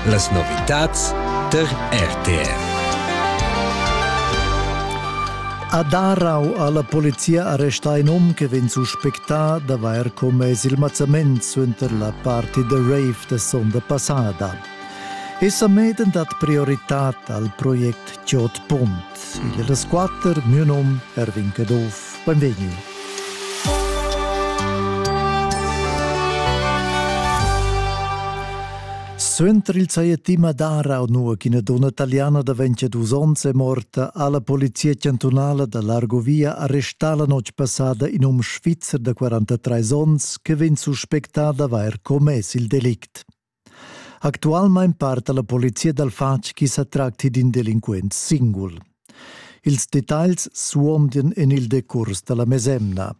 Las novitads ter RTR. A Darau ha la polizia arrestà in um che vegn suspectà d'avair commess il mazzament suenter la party de rave da sonda passada. Essa meden dat prioritad al project Chot Pont. Il è das quatter, mio nom Erwin Caduff. Benvegni. Suenter il saiettima d'Arau, nua ch'ina donna italiana da 22 onns è morta, ha la polizia chantunala da l'Argovia arrestà la notg passada in um svizzer da 43 onns che vegn suspectà d'avair commess il delict. Actualmein parta la polizia dal fatg chi sa tracti d'in delinquent singul. Ils detagls suondan en il decurs da la mesemna.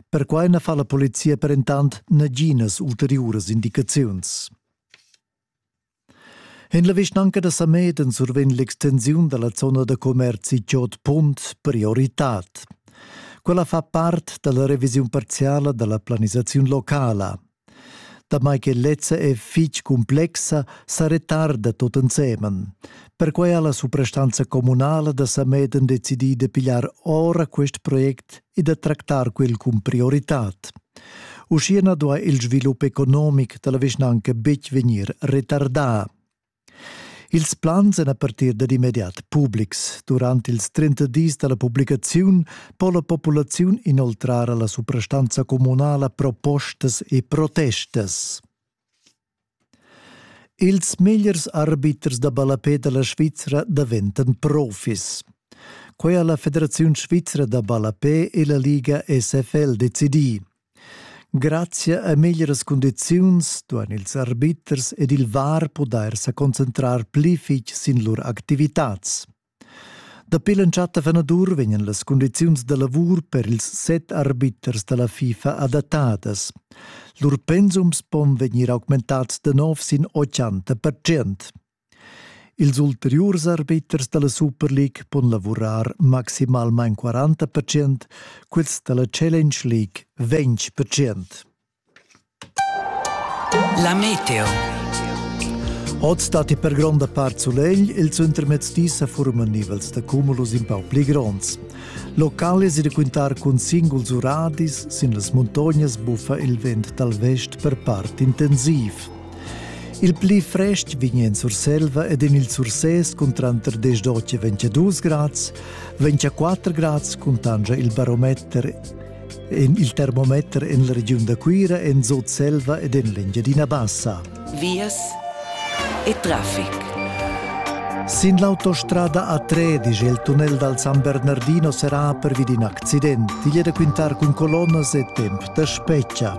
Perquai na fa la polizia per entant naginas ulteriuras indicaziuns. En la vischnanca da Sameden survegn l'extensiun da la zona da commerzi Giot Punt prioritad. Quella fa part da la revisiun parziala da la planisaziun locala. Damai che lezza è fitg cumplexa, sa retarda tut ensemen. Perquai ha la suprastanza communala da Sameden decidì da pigliar ora quest project e da tractar quel cun prioritad. Uschia na duai il svilup economic da la vischnanca betg vegnir retardà. Ils plans èn a partir dad immediat publics. Durant ils 30 dis da la publicaziun po la populaziun inoltrar a la suprastanza communala propostas e protestas. Ils megliers arbiters da ballapè da la Svizra daventan profis. Quai ha la Federaziun svizra da ballapè e la Liga SFL decidì. Grazia a meglieras cundiziuns duan ils arbiters ed il VAR pudair sa concentrar pli fitg sin lur activitads. Dapi l'entschatta fenadur vegnan las cundiziuns da lavur per ils set arbiters da la FIFA adattadas. Lur pensums pon vegnir augmentads da nov sin 80%. Ils ulteriurs arbiters dalla Superleague pon lavurar maximalmein quaranta percent, quels dalla Challenge League ventg percent. La Meteo. Oz datti per gronda part sulegl, il suentermezz di sa forman nivels da cumulus in pau pli gronds. Locales e da quintar cun singuls uradis sin las muntognas buffa il vent dal vest per part intensiv. Il pli frest vegn en Surselva ed en il Sursès cun tranter 10 e 8 22 grads, 24 grads cuntanscha il barometer en il termometer en la regiun da Cuira, en Sutselva ed en l'Engiadina Bassa. Vias e traffic. Sin l'autostrada A3 dice il tunnel dal San Bernardino serà pervi d'in accident. Igl è da quintar cun colonnas e temp da speccia.